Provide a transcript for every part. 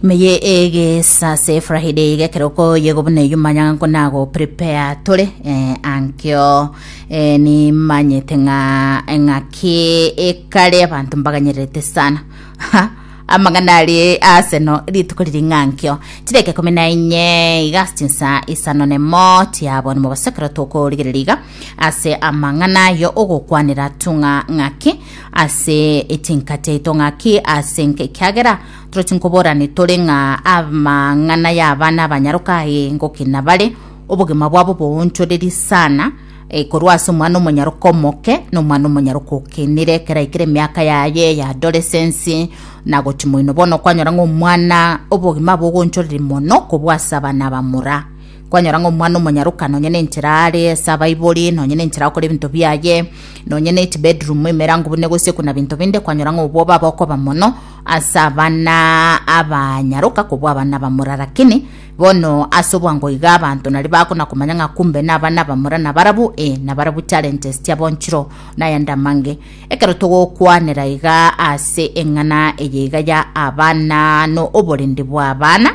Ime ye egesa ase efrahide iga ekero okoyegwa buna eyio manya nko nago prepare tore eh, ankio eh, nimanyete ng'a eng'aki ekare abanto mbaganyererete sana Ha, amang'ana arie aseno rituko riri ng'ankio chideka ikomi na inye iga ase chinsa isano nemo chiabonwa mobaso ekero tokorigereria iga ase amang'ana ayo ogokwanera tung'a ng'aki ase echinka chiaito ng'aki ase nka ekiagera Torochi nkobora nitore ng'a amang'ana y'abana abanyaroka aye ngoki nabare, obogima bwabo boonchoreri sana, eh, korwa ase omwana omonyaroka omoke na omwana omonyaroka okenire ekero aikire emiaka yaye ya adolescence na gochi moino. Bono kwanyora ng'a omwana obogima abo ogonchoreri mono kobua ase abana abamura. Kwanyora ng'a omwana omonyaroka nonye na enchera are ase abaibori, nonye na enchera akore ebinto biaye, nonye na echibedroom emerango buna egosikwa na binto binde, kwanyora ng'a obwoba aba okoba mono, Ase abana abanyaroka kobua abana bamura lakini bono ase obwango iga abanto nario bagakona komanya ng'a kumbe nabana bamura nabarabu ee nabarabu challenges chiabonchiro nayande amange ekero togokwanera iga ase eng'ana eye iga ya abana no oborindi bwa abana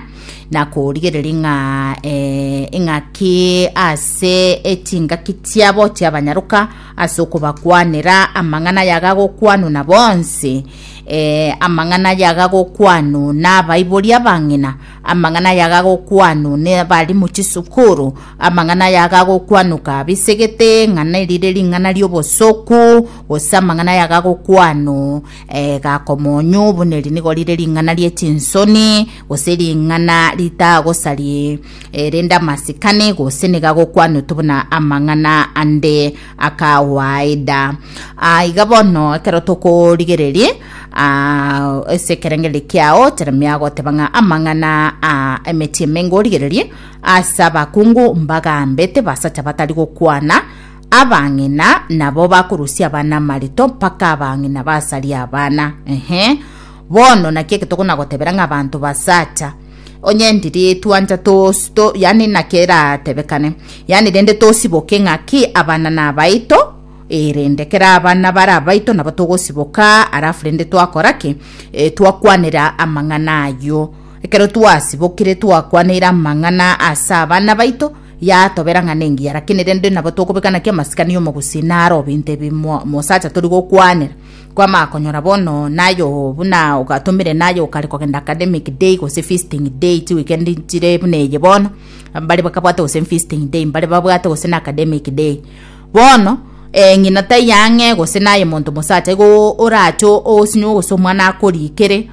nakorigereria ng'a ee ing'aki ase echingaki chiabo chiabanyaroka ase okobakwanera amang'ana aya agagokwanwa na bonsi Ee, amang'ana aya agagokwanwa n'abaibori abang'ina, amang'ana aya agagokwanwa n'abarimu chisukuru, amang'ana aya agagokwanwa kabisa isegete ng'a nerire ring'ana ri'obosoku, gose amang'ana aya agagokwanwa eh, gakomonyu buna eri nigo rire ring'ana ri'echinsoni, gose ring'ana ritagosari eh, rende amasikani, gose nigo agokwanwa tu buna amang'ana ande. akawaida. Ah, iga bono ekero tokorigereria ah, ase ekerengererio kiao Jeremia agoteba ng'a amang'ana a emechie emengo origererie ase abakungu mbagambete basacha batari gokwana abang'ina nabo bakorusia abana amarito mpaka abang'ina basaria abana ehe bono naki eke tokonagotebera ng'a abanto basacha Onye ndiri twancha tos, to, yani naki eratebekane, yani rende tosiboke ng'aki abana nabaito, e, rende kera abana bare abaito nabo togosiboka, arafu rende twakora ki? E, twakwanera amang'ana ayio. Ekero twasibokire twakwaneire amang'ana ase abana baito, yatobera ng'a nengiya, rakini rende nabo tokobeka naki amasikani y'omogusi naro binto ebi mo- mosacha tori gokwanera. Kwamakonyora bono nayo buna ogatomire naye okare kogenda academic day gose feasting day chiweekend chire buna eye bono mbare bakabwate gose feasting day mbare babwate gose na academic day bono eh, ng'ina taiyo ang'e gose naye monto mosacha igo orache osinywe gose omwana akorikere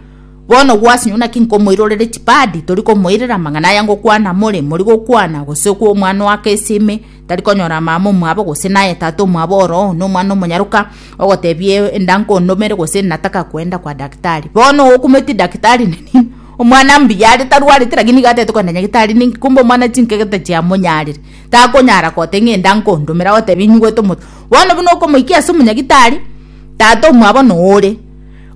bono gwasinywe naki nkomoirorere chipadi tori komoirera amang'ana aya ngokwana more mori gokwana gose kwa omwana oake esime tari konyora amama omwabo gose naye tata omwabo oroo nomwana omonyaroka, ogotebia enda nkondomere gose nataka kwenda kwa daktari. Bono ogokumeti daktari nini omwana mbuya are tarwarete lakini iga atagete kogenda nyagetari ninki kumbe omwana chinkege tachiamonyarire takonyara gote ng'a enda nkondomere agotebia nyigwete omote. Bono buna okomoikia ase omonyagitari, tata omwabo noore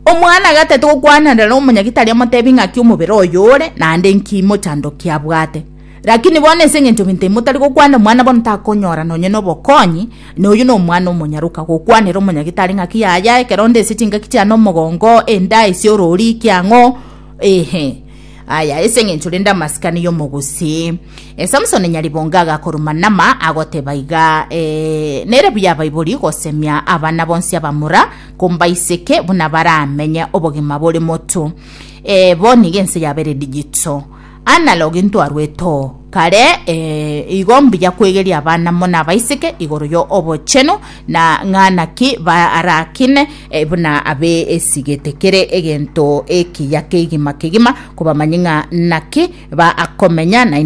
omwana iga atagete gokwanera na omonyagitari amotebie ng'aki omobere oyo ore naende nki mochando kiabwate. Rakini bono ense engencho gento ime motari gokwana omwana bono takonyora nonye nobokonyi, na oyio nomwana omonyaroka, gokwanera omonyagitari ng'aki yaya, ekero onde ase chingaki chiane omogongo, enda ise orori kiang'o, eeh, aya ase engencho rende amasikani y'omogusii. Eh, Samsoni nyaribongo agakoruma nama, agoteba iga, eh, nere buya abaibori gosemia abana bonsi abamura, kombaiseke buna baramenye obogima bore motu. Eh, bono iga ense yabeire digito. Analogue ntwarwete oo kare, ee, igo mbuya kwegeria abana mo na abaiseke igoro yo obochenu, na ng'a naki barakine eh, buna abe esigete kere egento ekiya kegima kegima, kobamanye ng'a naki bakomenya naende